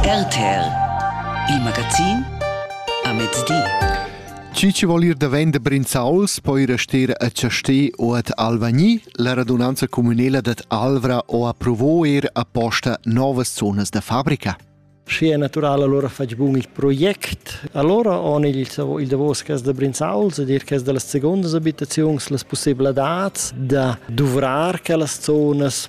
RTL Il magazin a mezdi. Chi ci vol ir da vender Brinzauls poi rester a Chastè o ad Alvagni. La radunanza comunela dad Alvra ho approvò er apposta novas zonas da fabrica. Schi è naturale allora fetg bun il project. Allora ho il, il davos cas da Brinzauls ed er cas da las secondas abitaziuns las possibilitads da duvrar quellas zonas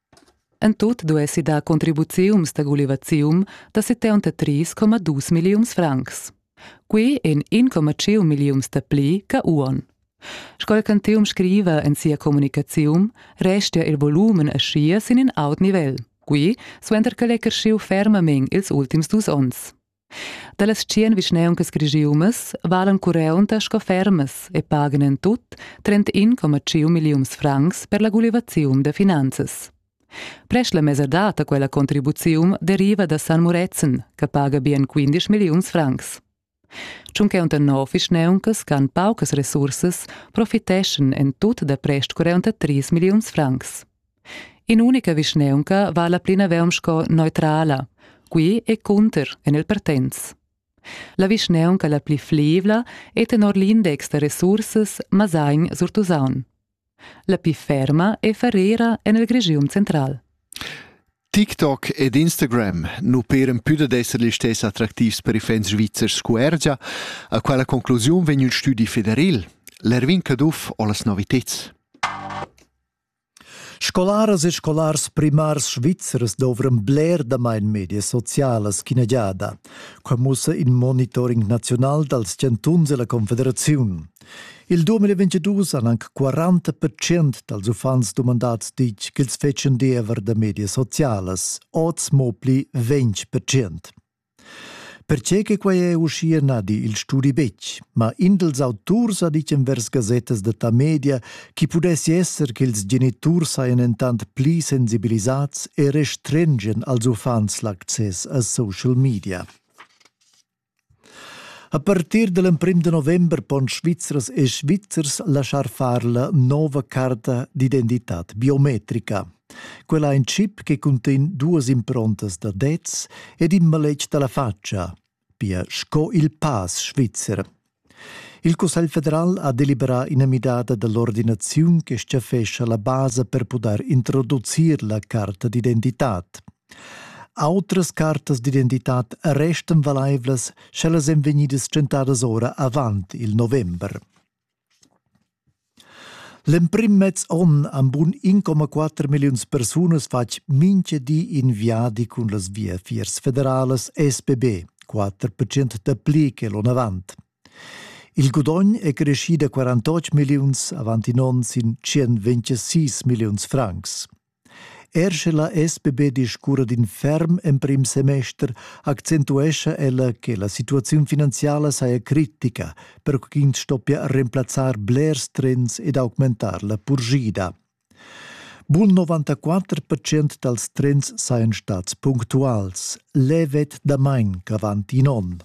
En tut duessi dar contribuziums da gulivazium da 73,2 milliuns francs. Quei en 1,5 milliuns da pli che uon. Sco Cantium scriva en sia communicaziun, restia il volumen aschia sin in aut nivel, qui suenter che l'ei cresciu fermamein ils ultims dus onns. Dallas tschien vischneuncas grigiumas valan cureunta sco fermas e pagan en tut 31,5 milliuns francs per la gulivaziun da finanzas. Prest la mesadad da quella contribuziun deriva da San Murezzan, che paga bien 15 milliuns francs. Tschuncheunta nov vischneuncas can paucas resursas profiteschan en tut da prest 43 milliuns francs. In'unica vischnaunca vala plinavon sco neutrala. Qui e cunter en il Partenz. La vischnaunca la pli fleivla è tenor l'index da resursas Masagn sur Tusaun. La pli ferma è Ferrera en il Grigium central. TikTok ed Instagram nu peren pü dad esser gli stess attraktivs per i fans svizzers scuergia. A quella conclusiun vegn ün studi federil, l'Erwin Caduff ho las noviteds. Scolaras e scolars primars svizzers dovran bler damain medias socialas ch'ina giada. Quai mussa in monitoring naziunal dals chantuns e la Confederaziun. Il 2022 han anc 40 percent dals uffants dumandads ditg ch'els fetschan diever da medias socialas, oz mo pli 20 percent. Perche che quei è uschia na di il studi betg, ma in dels auturs ha ditg envers gasettas da tamedia chi pudessi esser che ils geniturs sajan entant pli sensibilisats e restrengen als uffants l'access a social media. A partir del emprim de november pon Svizzers e Svizzers laschar far la nova carta d'identità biometrica. Quel ha in chip che cuntegn duas improntas da dets ed in maletg da la fatscha, pia sco il pass svizzer. Il Cussegl federal ha deliberà ina midada da l'ordinaziun che stgaffescha la basa per pudair introducir la carta d'identitad. Autras cartas d'identitad restan valaivlas, sche las èn vegnidas tschentadas ora avant il november. L'emprim mez onn han bun 1,4 milliuns persunas fatg mintga di in viadi cun las viafiers federalas SBB, 4% dapli che l'onn avant. Il gudogn è creschì da 48 milliuns avant in onn sin 126 milliuns francs. Er sche la SBB discurra d'in ferm emprim semester, accentuescha ella che la situaziun finanziala saja critica, per ch'ins stoppia remplazzar blers trends ed augmentar la purschida. Bun 94% dals trends sajan stads punctuals, levet damain ch'avant in onn.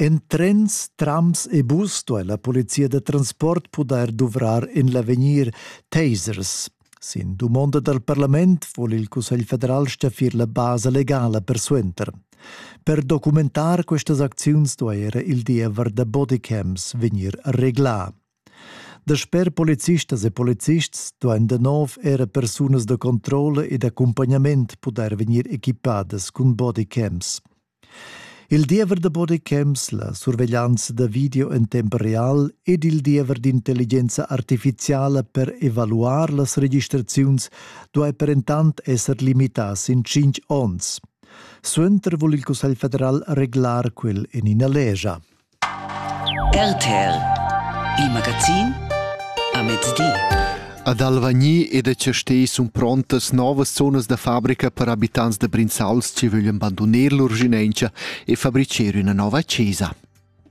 En trens, trams e bus duai la polizia da transport pudair duvrar en l'avegnir tasers. Sin dumonda dal parlament vul il Cussegl federal staffir la basa legala persuenter. Per documentar questas acziuns duai era il diever da bodycams vegnir reglà. Dasper policistas e polizists duain da nov era persunas da controlla e d'accumpagnament pudair vegnir equipadas cun bodycams. Il diever da bodycams, la surveglianza da video en temp real ed il diever d'intelligenza artificiala per evaluar las registraziuns duai perentant esser limità sin tschintg onns. Suenter vul il Cussegl federal reglar quel en ina legia. RTL Il magazin a mezdi. Ad Alvagni ed a Chastè sun prontas novas zonas da fabrica per abitants da Brinzals che vöglien bandoner lur ginencha e fabricher üna nova chesa.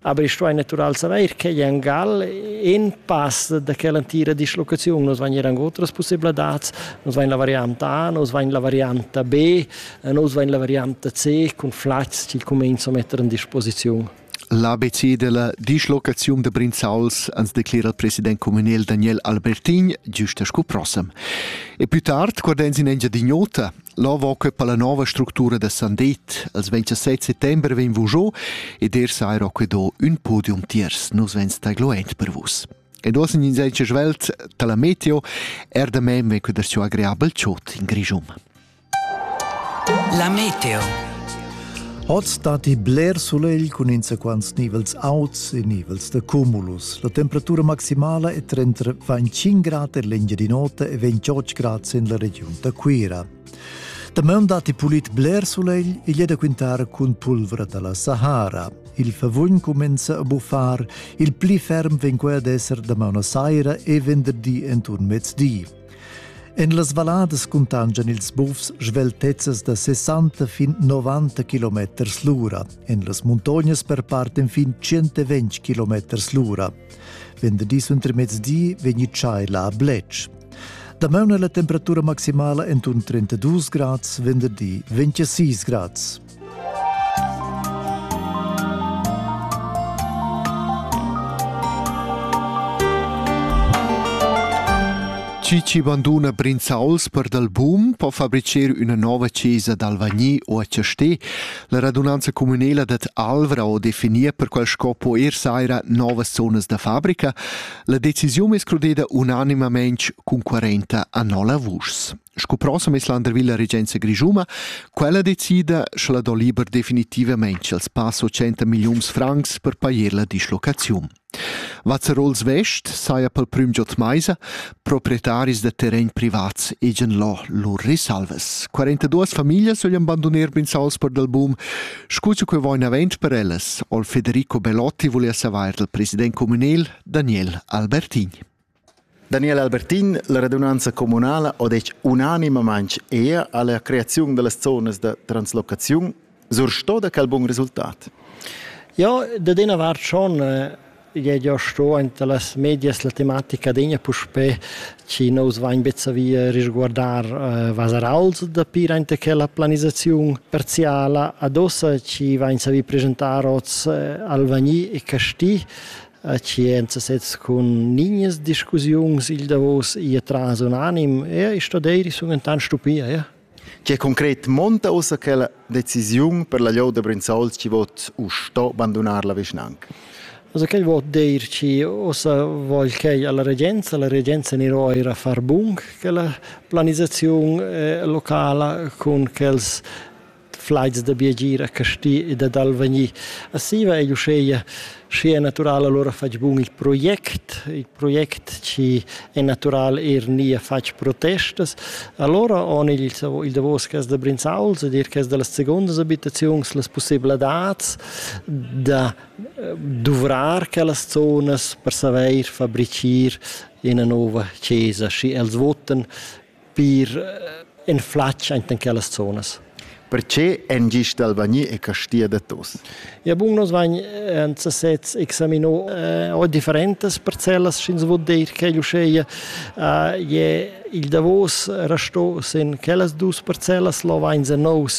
Aber ich stoi natural saver che in Gal in pass da quella antira dislocazione, nos vain ir anche otras possibilidades, nos vain la variante A, nos vain la variante B, En oz va la variante C cun flats che cominciano a mettere a disposizione. L'ABC della dislocazione de Brinzauls ans declera il president communal Daniel Albertin giusta scu prossem. E più tard, guardens in Engiadignota, là va que per la nova struttura de Sandet. Als 27 settembre ven vos giò ed er saira que do un podium tiers. Nos ven stagloent per vos. Ed osen in senza svelt, tala meteo, er da mem ven que der suo agreabel ciot in Grigium. La meteo. Oz datti bler sulegl cun insaquants nivels auts e nivels da cumulus. La temperatura maximala è trenta 25 grad en l'Engiadin'Ota e 28 grad en la regiun da Cuira. Damaun datti pulit bler sulegl e è da quintar cun pulvra da la Sahara. Il favugn cumenza a buffar, il pli ferm vegn quel ad esser damaun a saira e venderdi enturn mezdi. En las valladas cuntanschan ils bufs sveltezzas da 60 fin 90 km l'ura. En las muntognas perparten fin 120 km l'ura. Venerdì suentermezdi vegni tschaiva a Bletsch. Damaun è la temperatura maximala entorno 32 grads, venerdì 26 grads. Chi chi banduna Brinzauls per dal boom po fabricer üna nova chesa dal Vagni o a Chastè. La radunanza communela dat Alvra o definia per quel scopo er saira novas zonas da fabrica. La decisiun è escludeda unanimamente cun 40 a 9 vuschs. Sco proxim es l'andervilla regenza grischuma, quella decida, scha la do liber definitivamaing els pass 80 milliuns francs per pajer la dislocaziun. Vazzarols West saja pel prüm giò d'maisa proprietaris da terrain privats egen lo lur risalvas. 42 famiglias voglien bandoner Brinzauls per dal boom. Scu che quei vain avent per ellas, ol Federico Belotti volia savair dal president communal Daniel Albertin. Daniel Albertin, la radunanza communala ha detg unanimamain er alla creaziun dallas zonas da translocaziun sursto da quel bun resultat. Ja, da dena vart schon je jo sto ante las medias la tematica degna puspé ci nous vain bezzavia risguardar uh, vasarals da pir ante quella planisaziun parziala adossa ci vain savi presentar oz uh, Alvagni e Casti A scienza sez cun nignas discussiuns il davos ir tras un anim e i sto dir sun entant stupia, ja. Che concret monta ussa quella decisiun per la Lioda Brinzauls chi vot u sto bandunar la vischnanca? Also quel vot dir chi ossa vogl quei alla regenza, la regenza niro eira far bung quella planisaziun eh, locala cun quels flaids da biagir a Casti e da dal vegnir a Siva e uscheia schi è natural allora fatg bun il project, il project ci è natural er nia fatg protestas. Allora on il, il davos cas da Brinzauls ed er cas da las secondas abitaziuns las possibilitads da eh, duvrar quellas zonas per saveir fabricir ina nova chesa, schi els votan pir in flatg enten quellas zonas. Perche en gist Albani e Castia da Tos? Ja bun, nos vain en sesez examino eh, o differentas parcellas, sch'ins vod dir che l'uscheia eh, je il davos rasto sin quellas dus parcellas, lo vain se nous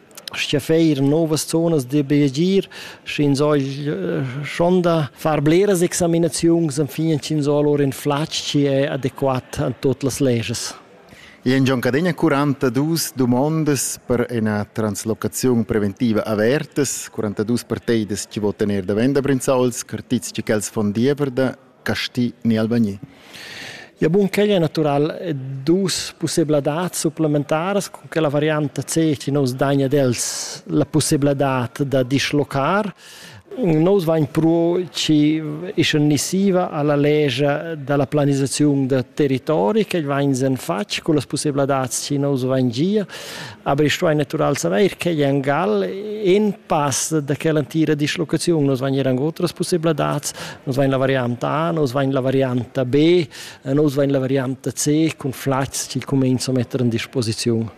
Scha veir novas zonas da biagir, sch'ins hogl schon da far bleras examinaziuns enfin ch'ins ho lur ün flatg chi è adequat a tuot las leges. I en Giancadegna 42 dumondas per ina translocaziun preventiva avertas, 42 parteidas chi votan eir davent da Brinzauls, cartits chi quels fon diever da casti ni Albania. Ja bun quel è natural dus possibilitads supplementaras con che la variante C ci nos dagna dels la possibilità da dislocar Nos vain pro ci iscennissiva alla legia dalla planisazione da territori che vain sen fatg con las possibilità ci nos vain gia Aber ich stuai natural saver che en Gal in pass da quella entira dislocaziun nos vain eran otras possibilitads, nos vain la varianta A, nos vain la varianta B, nos vain la varianta C cun flats chi comenzo a metter in disposiziun.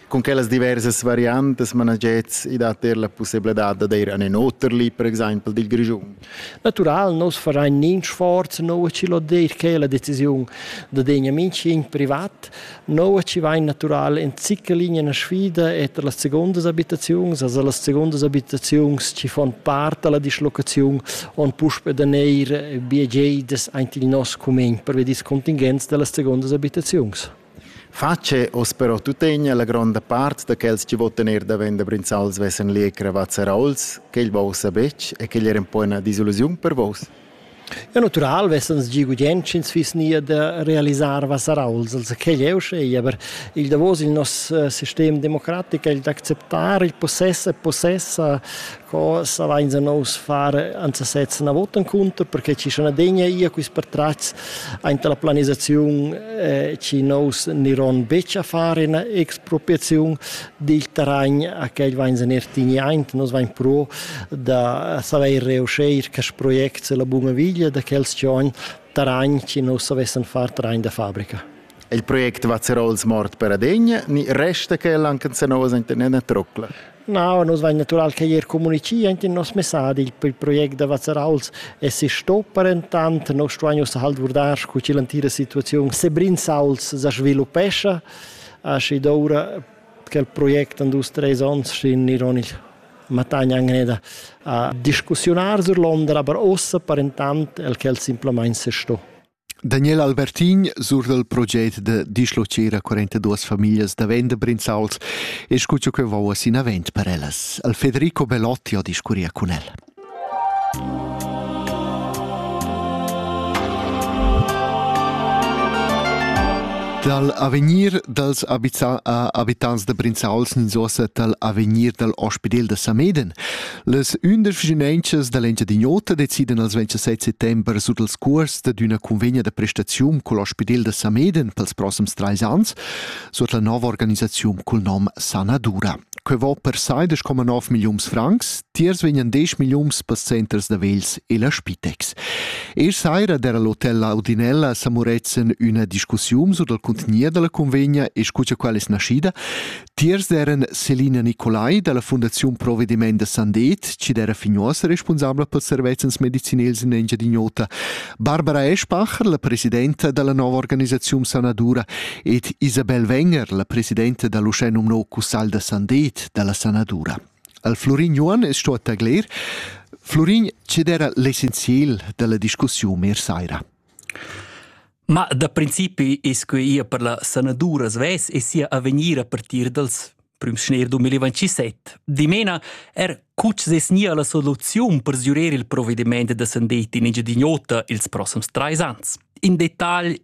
Con quellas diversas variantas managets i dat er la possibilità da dir an in oter li, per exempel dil Grischun? Natural nus farein nins sforz nua chi lo dir che la decisiun da degna mincin privat, nua chi vain natural in zicca linea na sfida e tra las segundas abitaziuns, also las segundas abitaziuns chi fon part alla dislocaziun on puspe da neir biegedas aint il nos cumegn per ver dis contingenz da las segundas abitaziuns. Fatg è oz però tuttegna la gronda part da quels che votan er davent da Brinzals vesan lì cravads raols, quel vossa betg e quel era poi una disillusiun per vos? Ja natural vessans gi gudient sch'ins fiss nia da realisar vasarauls, also quel è uschei, aber il davos il nos sistem democratic è il d'acceptar il possess e possessa Co savainsa nous far ans sezs na vot encunter perche chi sun adegna ia quist pertratgs aint la planisaziun eh, chi nous niron betg a far ina expropriaziun dil terragn a quel vainsa neir tignaint. Nus vain pro da savair reuscheir quest project la buna viglia da quel schiogn terragn chi nous savessan far terragn da fabrica. Il project va ser ols mort per adegna, ni resta quel anche se nous enten ena trocla? No, nus vain natural che eir comunichì aint in nos messadi. Il project da Vazzarauls es sto parentant. Nos stuain ussa halt guardar scu chi l'antira situaziun Sebrinzauls sa sviluppescha. Aschi doura quel project in dus, treis ons schi'n iron il matagna gneda a discussiunar sur Londra, aber ossa parentant el quel simplamaing se sto. Daniel Albertin sur dal proget da dischlocher a 42 famiglias da vender brinzauls e scuccio che vau as inavent per ellas. Al Federico Belotti ho discurria cun el. Dal avegnir dals abita a abitants da Brinzauls ninzosa dal avegnir dal ospidel da Sameden Las undisch vischinanças da l'Engiadin'Ota decidan els 27 settember sur dals curs dad üna convegna da prestaziun cul ospidel da Sameden pels prossems trais ans suot la nova organisaziun cul nom Sanadura. Que vo per sai 10,9 milliuns francs, tiers vegnan 10 milliuns pels centers da vegls e la Spitex. E saira d'era l'hotel La Audinella a Samuretzen üna discussiun sur dal contenier da la convegna e scu cha quella es naschida, Tiers eran Selina Nicolai dalla Fundaziun Provvediment da Sandet, chi era fin uossa responsabla per servezzans medicinels in Engiadin'Ota, Barbara Eschbacher, la presidenta dalla nova organisaziun Sanadura ed Isabel Wenger, la presidenta dall'uschè nomnò Cussal da Sandet dalla Sanadura. Al Florin Juan es sto tagler. Florin, che era l'essenziel dalla discussiun er saira? Ma da principi es quai ir per la sanadura svess e sia avegnir a partir dals prüms schner 2027. Dimena er cuts es nia la soluziun per sgürer il provedimaint da sandet in Engiadin'Ota ils prossums trais ans. In detagl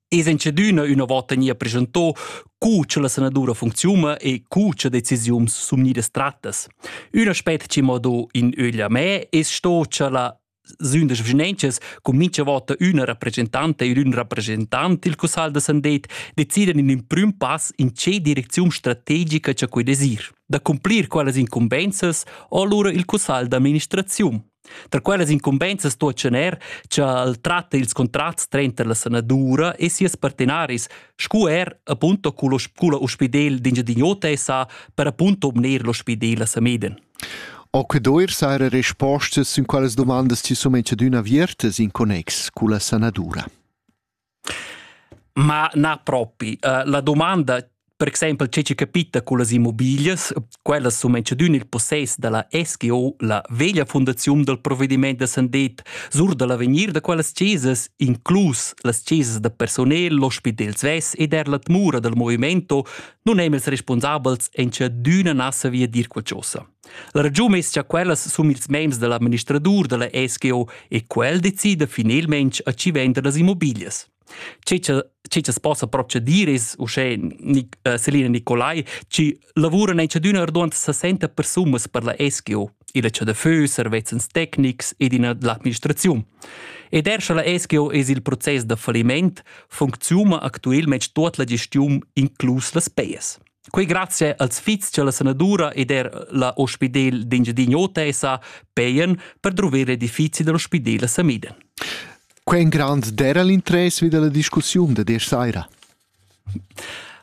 es in cedüna üna vota nia presentò cu cha la sanadura funcziuna e cu cha decisiuns sumnidas trattas. Un aspet chi m'ho do in ögl a me es sto cha la sün das vschinenchas cun mincha vota üna rappresentanta ed ün rappresentant il cussagl da Sandet decidan in ün prüm pass in che direcziun strategica cha quei desir. Da cumplir quellas incumbenzas o allura il cussagl d'amministraziun. Tra quellas incumbenzas sto er ch'el tratta ils contrats tranter la sanadura e sias partenaris, scu er appunto culla ospidel d'Engiadin'Ota e sa per appunto obner l'ospidel a Sameden. O que do eir saira respostas sün quellas dumandas chi sun enchadüna aviertas in connex culla sanadura? Ma na propi. Uh, la domanda per exempel tge che capita con las immobiglias, quellas sun enchadün il possess da la SGO, la veglia fundaziun dal provvediment da Sandet, sur da l'avegnir da quellas chesas, inclus las chesas da personel, l'ospidel svess ed er la tmura dal movimento, nun è ils responsabels en che d'üna nassa via dir qualchosa. La ragiun es cha quellas sun ils mems da l'administradur da la SGO e quel decida finelmente a chi vender las immobiglias. Ce che ce che possa procedir es uschè Selina Nicolai chi lavura in ciadüna ardont 60 persunas per la SGO. illa chadafö, servezzans tecnics ed in l'administraziun. Ed er scha la SGO es il process da falliment, funcziuna actuelmente tot la gestiun, inclus las payes. Quei grazie als fits che la sanadura ed er la ospidel d'Engiadinho Tesa peien per drover l'edifizi dell'ospidel a Samiden. Quei en grand dera l'interess vi della discussiun de desch saira.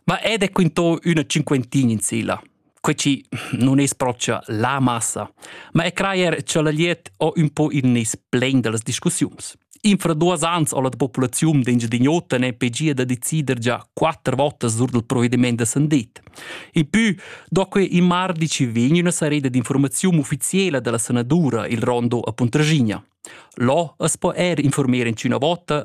Ma ed è quinto üna cinquentin in silla. Quei chi non es propcha la massa, ma è crajer cha la liet ho un po in nes plen da las discussiuns. Infra duos ans ho la populaziun d'Engiadin'Ota ne pegia da decider già quatter votas sur dal provvediment da Sandit. In pü, do que in mardi ci vegn üna sareda d'informaziun ufficiela dalla senatura il rondo a Puntraschigna. Là as po er informer in üna vota